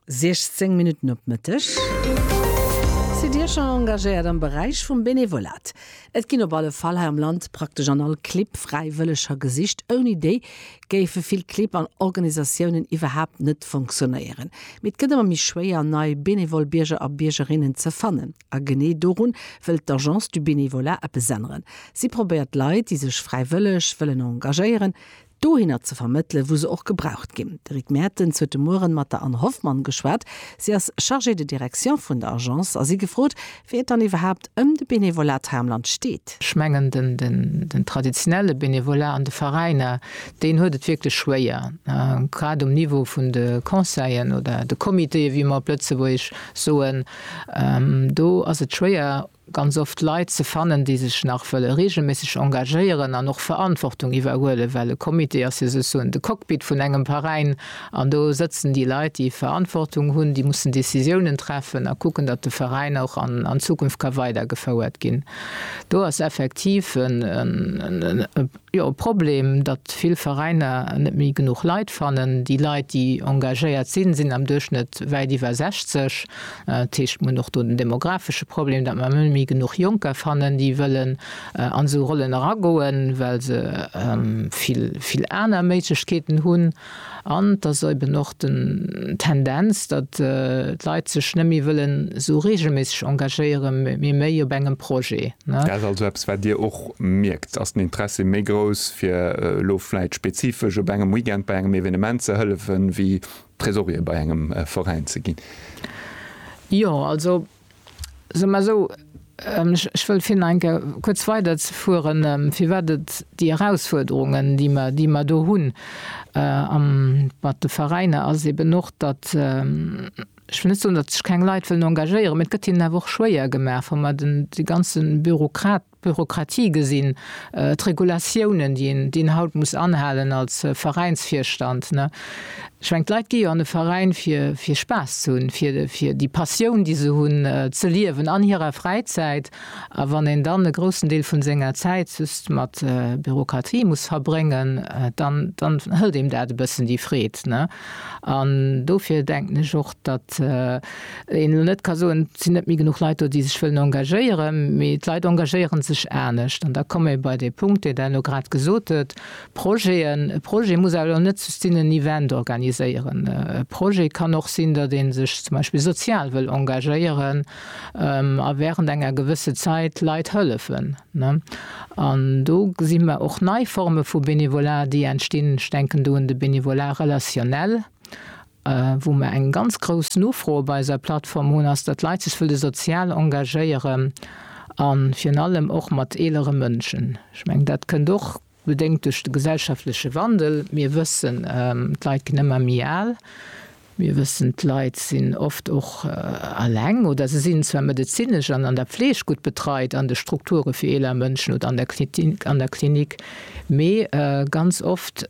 16 Minutten op Mëtteg. Sidd Dir scho engagéiert am Beräich vum Benevolat? Et ginn op alle Fall hei am Land praktesch an all Clibb Fräiwëlleger gesicht. Ouni déi géife vill Clibb an Organisatiounen iwwerhaapt net fonctionnéieren. Mee et gëtt ëmmer méi schwéier, nei benevol Bierger a Biergerinnen ze fannen. A genee dorun wëllt d'Agence du Bénévolat eppes änneren. Si probéiert d'Leit, déi sech fräiwëlleg wëllen engagéieren, dohinner ze vermëttele wou se och gebraucht ginn. De Rick Mertens huet de Mueren mat der Anne Hoffmann geschwat. Si ass Chargée de direction vun der Agence a si gefrot, wéi et dann iwwerhaapt ëm de Benevolat hei am Land steet. Ech mengen den traditionelle Benevolat an de Veräiner, deen huet et wierklech schwéier, grad um Niveau vun de Conseillen oder de Comitéë wéi mer op Lëtzebuergesch soen. Do ass et schwéier ganz oft Leit ze fannen, déi sech nach wëlle reegelméisseg engagéieren an och Verantwortung iwwerhuelen, well e Comité ass jo souzesoen de Cockpit vun engem Veräin an do sëtzen déi Leit, déi Verantwortung hunn, déi mussen Décisiounen treffen a kucken, datt de Veräin och an Zukunft ka weidergefouert ginn. Do ass effektiv e. Jo, e Problem, datt vill Veräiner net méi genuch Leit fannen. Déi Leit, déi engagéiert sinn, sinn am Duerchschnëtt wäit iwwer 60. Dat heescht, mir hunn och do den demographesche Problem, datt mer net méi genuch Jonker fannen, déi wëllen an esou Rollen eragoen, well se vill, vill aner Méiglechkeeten hunn. An et ass eben och den Tendenz, datt d'Leit sech net méi wëllen esou reegelméisseg engagéiere mee méi op engem Projet. Dat ass also eppes, wat Dir och mierkt. Ass den Interessi méi grouss, fir elo vläicht spezifesch op engem Weekend bei engem Evenement ze hëllefen, wéi Tresorier bei engem Veräin ze ginn? Jo, also Soe mer esou, ech wëll fir nach eng Kéier kuerz weiderzefueren, firwat et déi Erausfuerderungen, déi mer do hunn mat de Veräiner, ass eben och, datt, ech wëll net soen, datt sech keng Leit wëllen engagéieren, mä et gëtt hinnen awer och schwéier gemaach, wa mer déi ganze Bürokrat, Bürokratie gesinn, d'Regulatiounen, déi een, déi een haut muss anhalen als Veräinsvirstand. Ech meng, d'Leit gi jo an e Veräin, fir, fir Spaass ze hunn, fir, fir déi Passioun, déi se hunn, ze liewen an hirer Fräizäit. A wann een dann e groussen Deel vu senger Zäit just mat Bürokratie muss verbréngen, dann, dann hëlt deem dat e bëssen déi Freed. An dofir denken ech och, datt, Wéi een elo net ka soen, et sinn net méi genuch Leit do, déi sech wëllen engagéieren, mee d'Leit engagéiere sech anescht. An da komme mir bei dee Punkt, deen Der elo grad gesot hutt, Projeten. E Projet muss awer elo net just sinn, en Event organiséieren. E Projet kann och sinn, datt ee sech zum Beispill sozial wëll engagéieren a während enger gewësse Zäit Leit hëllefen. An do gesi mer och nei Forme vu Bénévolat, déi entstinn. Ech denken do un de Bénévolat relationnel. Wou mer eng ganz grouss Nofro op eiser Plattform hunn, ass datt Leit sech wëlle sozial engagéieren a virun allem och mat eelere Mënschen. Ech mengen dat kënnt och bedéngt duerch de gesellschaftleche Wandel. Mir wëssen, d'Leit ginn ëmmer méi al. Mir wëssen, d'Leit sinn oft och alleng oder se sinn zwar medezinesch an an der Fleeg gutt betreit an de Strukture fir eeler Mënschen oder an der Klinik, mee ganz oft,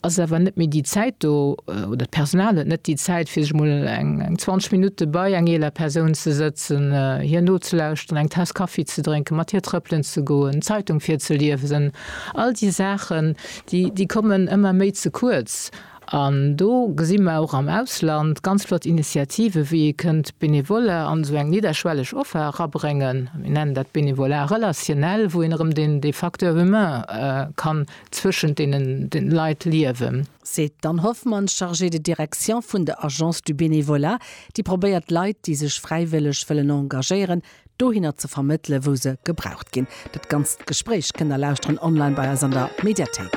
ass awer net méi déi Zäit do oder d'Personal huet net déi Zäit, fir sech emol eng 20 Minutte bei eng eeler Persoun ze sëtzen, hir nozelauschteren, eng Taass Kaffi ze drénken, mat hir trëppelen ze goen, d'Zeitung virzeliewsen. All déi Saachen, déi kommen ëmmer méi ze kuerz. An do gesi mer och am Ausland ganz flott Initiativen, wéi ee kënnt Benevole an esou eng nidderschwelleg Offer erabréngen, mir nennen dat Bénévolat relationnel, wou een erëm dee Facteur humain ka zwëschent deenen Leit liewen. Seet d'Anne Hoffmann, Chargée de direction vun der Agence du Bénévolat, déi probéiert d'Leit, déi sech fräiwëlleg wëllen engagéieren, dohinner ze vermëttele wou se gebraucht ginn. Dat ganzt Gespréich kënnt der lauschteren online bei eis an der Mediathéik.